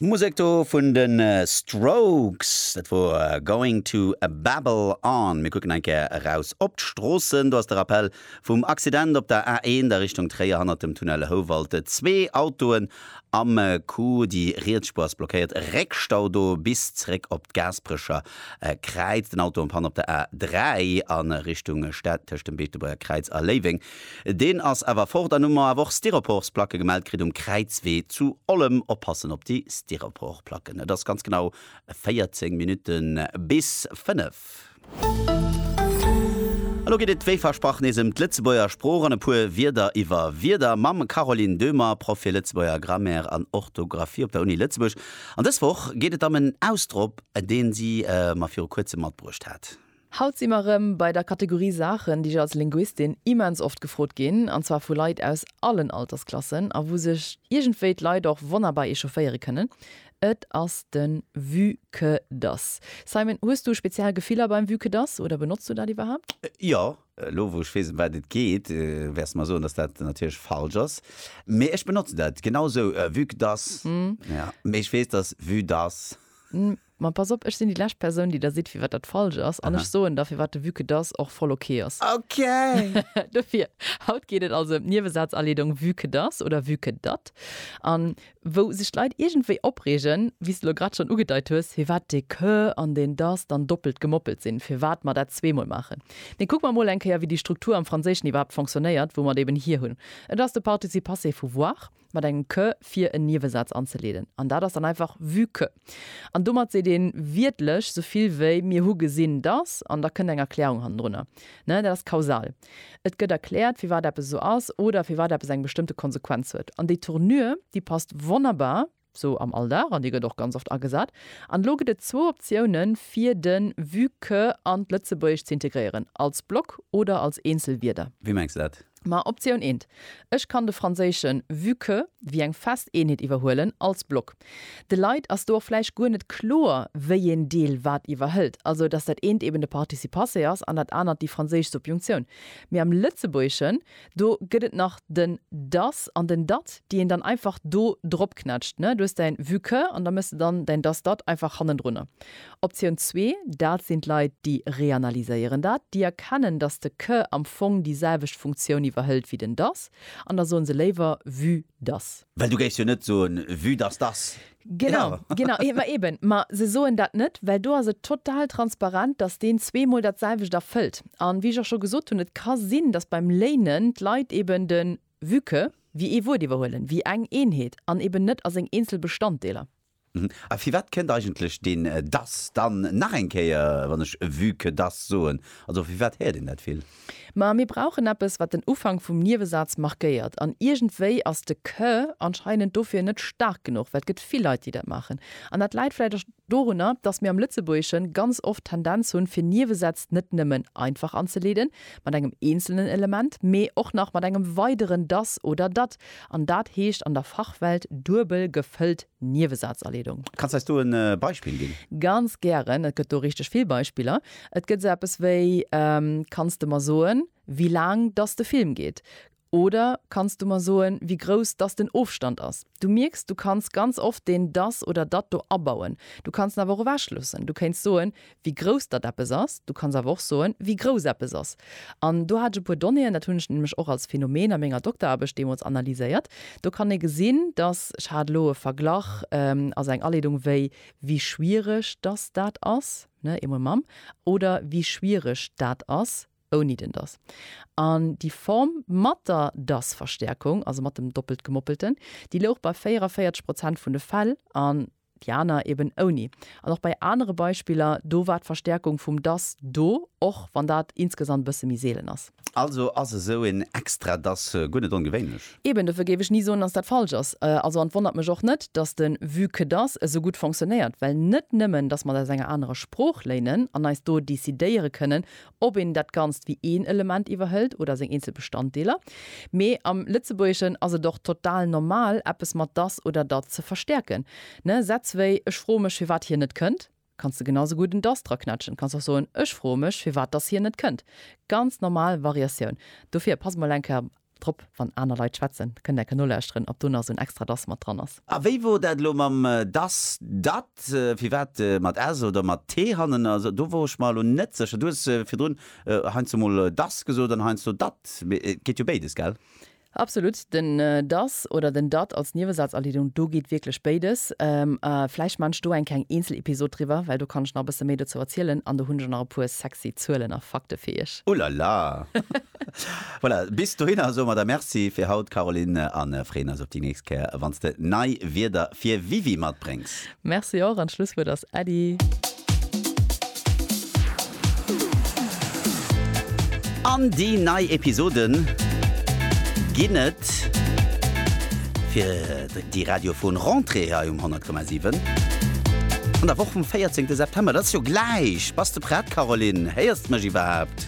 D'Musek do vun de Strokes, dat wor Going to Babble On. Mir kucken eng Kéier eraus op d'Stroossen. Do ass de Rappell vum Accident op der A1 a Richtung Tréier hannert dem Tunnel Houwald. Zwee Autoen am Coup, déi riets Spuer ass blockéiert. Réckstau do bis zréck op d'Gaasperecher Kräiz. Den Auto am Panne op der A3 a Richtung Stad tëscht dem Beetebuerger Kräiz a Léiweng. Deen ass awer fort an hun mer awer och Styroporsplacke gemellt kritt um Kräizwee zu Ollem. Oppassen op déi Styroporplacken. Et ass ganz genau 14 Minuten bis 5. Elo geet et wéi versprach nees em d'Lëtzebuerger Sprooch an e puer Wierder iwwer Wierder mam Caroline Döhmer, Proff fir Lëtzebuerger Grammaire an Orthographie op der Uni Lëtzebuerg. An dës Woch geet et em en Ausdropp, deen si mer viru kuerzem matbruecht hat. Haut si mer erëm bei der Kategorie Saachen, déi ech als Linguistin immens oft gefrot ginn, an zwar vu Leit aus allen Altersklassen, a wou sech iergendwéi d'Leit och wonnerbar echaufféiere kënnen. Et ass de Vu que dass. Simon, hues du speziell Gefiller beim Vu que dass oder benotz du dat iwwerhaapt? Jo. Elo wou ech weess, ëm wat et geet, wäers de mer soen, dass dat natierlech falsch ass. Mee ech benotze dat genau esou, vu que dass. Mee ech weess, dass vu dass. Ma pass op, ech sinn déi lescht Persoun, déi der sidd, firwat dat falsch ass. An ech soen der, firwat de Vue-que das och voll ok ass. Ok! Dofir, haut geet et also ëm d'Niewesazaleedong Vue-que das oder Vue-que dat. An wou sech d'Leit iergendwéi opreegen, wéi s de elo grad schonn ugedeit hues, firwat dee que an deen das dann doppelt gemoppelt sinn, firwat mer dat zweemol maachen. Mee kucke mer emol eng Kéier, wéi déi Struktur am Franséischen iwwerhaapt fonctionnéiert, wou mer et eeben hir hunn. Et ass de Participe passé vu voir. mat engem que fir en Niewesaz anzeleeden, an dat ass dann einfach vue que. An domat seet ee wiertlech sou vill wéi mir hu gesinn datt, an da kënnt eng Erklärung hannendrunner. Dat ass kausal. Et gëtt erkläert, firwat eppes esou ass oder firwat eppes eng bestëmmte Konsequenz huet. An déi Tournure, déi passt wonnerbar sou am Alldag, an déi gëtt och ganz oft agesat. An elo gëtt et zwou Optiounen, fir de vue que an d'Lëtzebuergescht ze integréieren, als Block oder als eenzel Wierder. Wéi mengs de dat? Ma Optioun eent, ech kann de franséischen vue que wéi eng fest Eenheet iwwerhuelen als Block. De Leit ass do och vläicht guer net kloer, wéieen Deel wat iwwerhëlt, also datt dat eent eben de Participe-passé ass an dat anert déi franséisch Subjunctioun. Mee am Lëtzebuergeschen, do gëtt et nach den das an den dat, déi een dann einfach do dropknätscht, ne? Du hues däin vue que an da méchs de dann däin das-dat einfach hannendrunner. Optioun zwee, dat sinn d'Leit, déi reanalyséieren dat, déi erkennen, datt de que am Fong déi selwecht Funktioun iwwerhëlt wéi den dass, an da soen se léiwer vue dass. Well du géifs jo net soen vue dass dass. Genau, genau, ma eben, ma se soen dat net, well do ass et total transparent, datt deen zweemol dat selwecht erfëllt. A wéi ech och scho gesot hunn, et ka sinn, datt beim léinen d'Leit eben de vue que wéi ee Wuert iwwerhuelen, wéi eng Eenheet an eben net a seng eenzel Bestanddeeler. A firwat kënnt eigentlech deen dass dann nach eng Kéier, wann ech vu que dass soen? Also firwat héiert een dat vill? Ma mir brauchen eppes, wat den Ufank vum Niewesaz markéiert. An iergendwéi ass de que anscheinend dofir net staark genuch, well et gëtt vill Leit, déi dat maachen. An dat läit vläicht och dorunner, dass mir am Lëtzebuergesche ganz oft d'Tendenz hunn, fir Niewesätz net nëmmen einfach anzeleeden, mat engem eenzelnen Element, mee och nach mat engem weideren dass oder dat. An dat heescht an der Fachwelt duebel gefëllt Niewesazaleedung. Kanns eis do e Beispill ginn? Ganz gären, et gëtt do richteg vill Beispiller. Et gëtt esou eppes wéi, Kanns de mer soen, wéi laang dass de Film geet? oder Kanns du mer soen, wéi grouss dass den Ofstand ass? Du mierks, du kanns ganz oft deen dass oder dat do abauen. Du kanns en awer och ewechloossen. Du kéints soen, wéi grouss dat eppes ass, du kanns awer och soen, wéi grouss eppes ass. An do hat ech e puer Donnéeën, dat hunn ech nämlech och als Phänomen a menger Dokteraarbecht deemools analyséiert. Do kann ee gesinn, dass, ech hat elo e Verglach als eng Aleedung, wéi wie schwierig dass dat ass, ne, eemol mam, oder wie schwierig dat ass ouni den dass. An déi Form mat der dass-Verstärkung, also mat dem Doppeltgemoppelten, déi louch bei 44 Prozent vun de Fäll an déi aner eben ouni. An och bei anere Beispiller, do war d'Verstärkung vum dass do, och wann dat insgesamt e bësse méi seelen ass. Also ass esou een extra dass guer net ongewéinlech? Eben, dofir géif ech ni soen, dass dat falsch ass. Also, an et wonnert mech och net, dass de vue que dass esou gutt fonctionnéiert, well net nëmmen, dass mer et aus enger anerer Sprooch léinen an eis do decidéiere kënnen, ob een dat Ganzt wéi een Element iwwerhëlt oder seng eenzel Bestanddeeler. Mee am Lëtzebuergeschen ass et och total normal, eppes mat dass oder dat ze verstäerken. Ne, Sätz wéi Ech froe mech, firwat hien net kënnt, kanns de genau esou gutt en dass draquetschen. Kanns och soen, Ech froe mech, firwat dass hien net kënnt. Ganz normal Variatioun. Dofir pass mol eng Kéier Drop, wann aner Leit schwätzen, kënnt enke nolauschteren, ob do nach esou en extra das mat dran ass. A wéi wor dat elo mam das, dat, firwat mat s oder mat t hannen ass? Do wor ech mer elo net sécher. Du hues virdrun heiansdo mol das gesot an heiansdo dat. Mee et geet jo béides, gell? Absolut. Den das oder den dat als Niewesazerliedung, do geet wierklech béides. A vläicht maan ech do eng kleng Eenzelepisod driwwer, well do kann ech nach e bësse méi dozou erzielen an do hunn ech och nach e puer sexy Zuelen a Fakte fir iech. Ulala! Voilà, bis dohinner soe mer der Merci fir haut, Caroline, a freeën eis op déi nächst Kéier, wann s de nei Wierder fir WiWi matbréngs. Merci och an d'Schlusswuert ass Äddi. An déi nei Episode ginn et fir déi radiofon Rentrée hei um 100,7 an der Woch vum 14 September. Dat ass jo gläich. Bass de prett, Caroline? Héiers de mech iwwerhaapt?